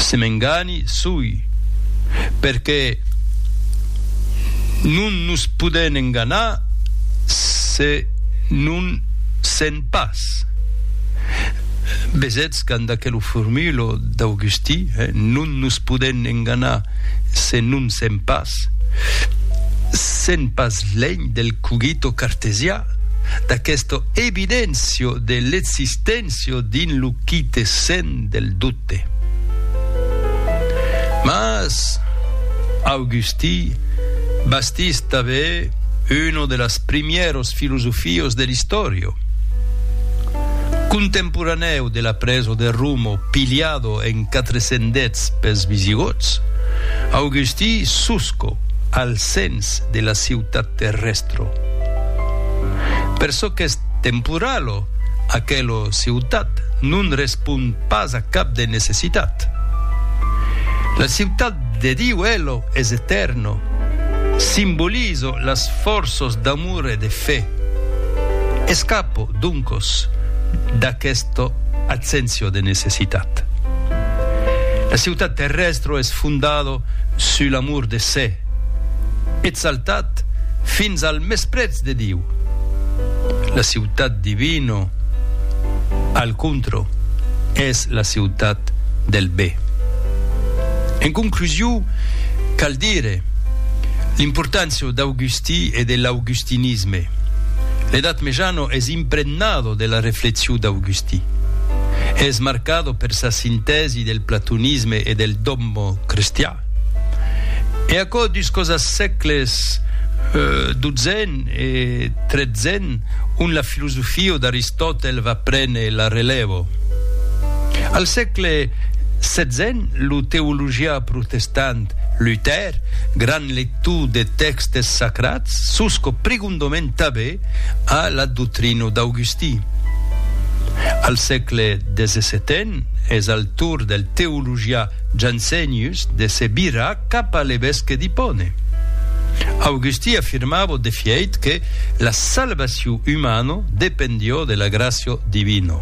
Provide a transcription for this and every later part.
Se m'engani, soi, perqué non nos podèn enganar se non sèn pas. Vesètz quand d'aquelo formulo d'Augustí, non nos podèn enganar se non sèn pas, sèn pas lènh del cogito cartesià, d'aquesta evidéncia de l'existéncia dins lo. qui te sent del doute. Mas, Augusti, bastís tanben uno de las primièros filosofios de l'istòrio. Contemporanèu de la preso de Romo pilhado en 410 pels Visigòts, Augusti susco al sens de la ciutat terrestro. Per çò qu'es temporalo, Aquela ciutat non respond pas a cap de necessitat. La ciutat de Diu, ela, es etèrna, simboliza las fòrças d'amor e de fe. Escapa, doncas, d'aquesta abséncia de necessitat. La ciutat terrèstra es fondada sus l'amor de se, exaltat fins al mesprètz de Diu. La ciutat divino, al contro, es la ciutat del be. En conclusiu, cal dire l'importància d'Augustí e de l'augustinisme. L'Edat Mejano es impregnado de la reflexiu d'Augustí. Es marcado per sa sintèsi del platonisme e del dogma cristià. E aquò dus causas sècles xii e xiii, ont la filosofio d'Aristòtel va prene la relèvo. Al sècle xvi, lo teologià protestant Luther, grand lector de tèxtes sacrats, sosco prigondament tanben a la doctrina d'Augustí. Al sècle xvii es al torn del teologià Jansenius de se virar cap a l'evesque d'Hippone. Augusti afirmavo de fièit que la salvacion umano dependió de la gràcia divina.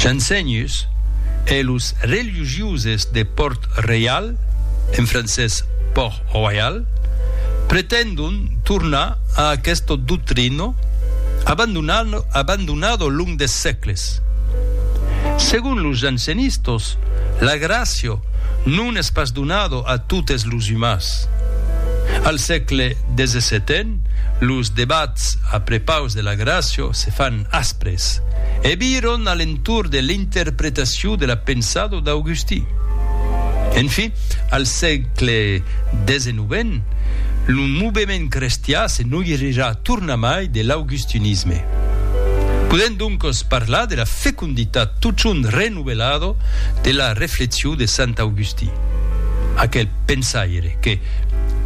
Jansenius e los religiuses de Pòrt Reial, en francés Port Royal, pretendon tornar a aquesta doctrina abandonada long de sècles. Res. Segon los jansenistos, la gràcia non es pas donada a totes los umans. Al sègle xvii, los debats a prepaus de la gràcia se fan aspres e viran a l'entorn de l'interpretacion de la pensada d'Augustí. Enfin, al sègle xix, lo movement crestiá se noirirà tornamai de l'augustinisme. Podèm doncos parlar de la feconditat totjorn renovelada de la reflexion de sant Augustí, aquel pensaire que,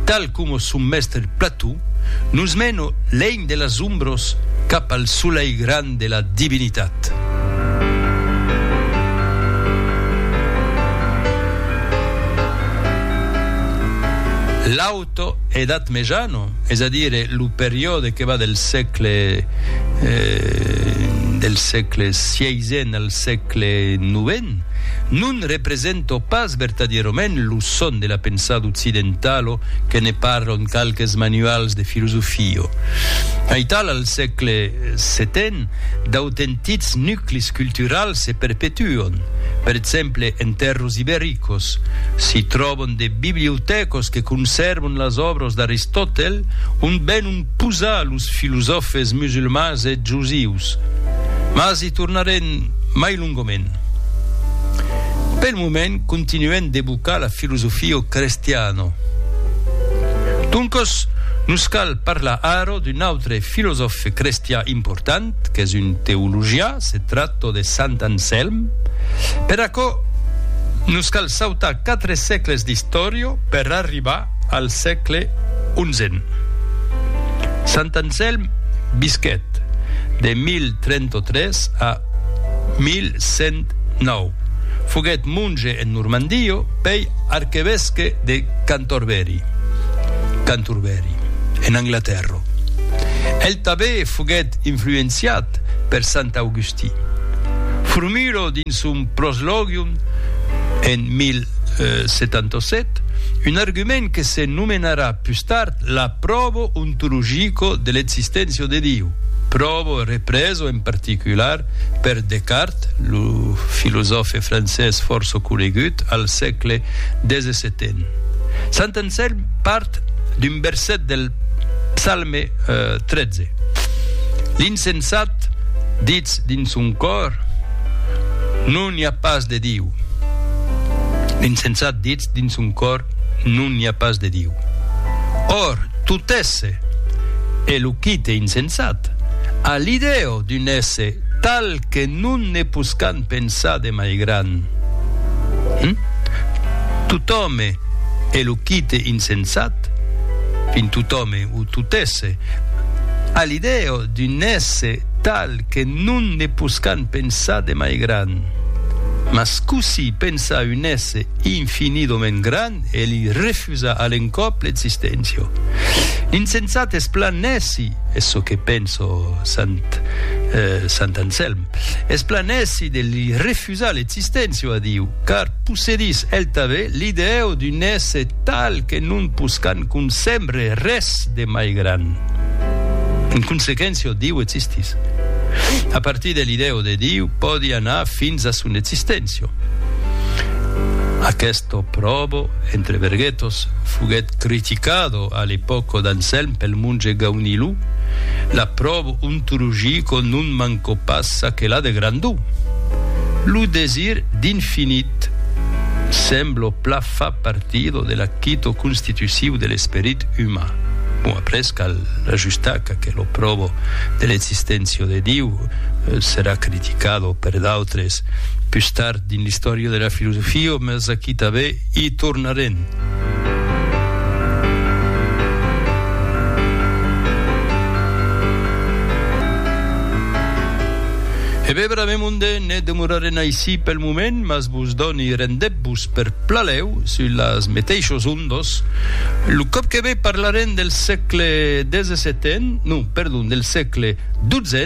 tal coma son mèstre Plató, nos mena lènh de las ombras cap al solelh grand de la divinitat. Auto Edat Mejana, es a dire lo periòde que va del sègle del sègle sièisen al sègle novent, non representa pas vertadièrament lo son de la pensada occidentala que ne parlan qualques manuals de filosofia. Aital al sègle setèn, d'autentics nuclis culturals se perpetuan. Per exemple, en tèrras ibericas, s'i tròban de bibliotècos que consèrvan las òbras d'Aristòtel, ont venon posar los filosòfes musulmans e josius. Mas i tornarem mai longament. Pel moment continuem d'evocar la filosofia crestiana. Doncas, nos cal parlar ara d'un autre filosòfe crestian important, qu'es un teologian, se tracta de Sant Anselm. Per aquò, nos cal Sautà quatre sècles d'istòria per arribar al sègle onzen. Sant Anselm visquèt de 1033 a 1109. Foguèt monge en Normandia, pei arquevesque de Cantorbèri, Cantorbery, en Anglatèrra. El tanbé foguèt influenciat per Sant Augustí. Formulò dins son Proslogium, en 1077, un argument que se nomenarà pus tard la probo ontologico de l'existéncia de Diu, probo represo en particular per Descartes, lo filosòfe francés fòrça conegut al sègle xvii. Sant Anselm part d'un verset del. Psalme 13. L'insensat ditz dins son còr, Non i a pas de Diu. L'insensat ditz dins son còr, Non i a pas de Diu. Or, tot esse, e lo quite insensat, a l'ideo d'un esse tal que non ne poscan Pensar de mai gran. Hum? Totòme e lo quite insensat, fin totòme o totesse, a l'idèa d'un èsse tal que non ne poscan pensar de mai gran. Mas cossí pensar un èsse infinidament gran e li refusar a l'encòp l'existéncia? L'insensat es plan èssi, es çò que pensa sant Anselm. Esplanèsi de li refusar l'existéncia a Diu, car possedís el tanben l'idèu d'un èsse tal que non poscan concèbre res de mai gran. En consequéncia, Diu existís. A partir de l'idèu de Diu pòdi anar fins a son existéncia. Aquesto pròbo, entre verguetos, foguèt criticado a l'epòca d'Anselm pel monge Gaunilou, la pròbo, Un trugico non manco pas ça que l'a de grandó. Lo desir d'infinit, semblo pla fa partido de l'acquito constitusiu de l'esperit uman. Bon, après cal ajustar qu'aquel oprobo de l'existencia de Diu serà criticado per d'autres pus tard, Dins l'istòria de la filosofia, mas aquí tanben i tornarem. E ben, bravem onde ne demorarem aicí pel moment, mas vos doni rendètz-vos per Plaléu sus las meteishos ondos. Lo còp que ve parlarem del sègle 17, non, perdon, del sègle 12.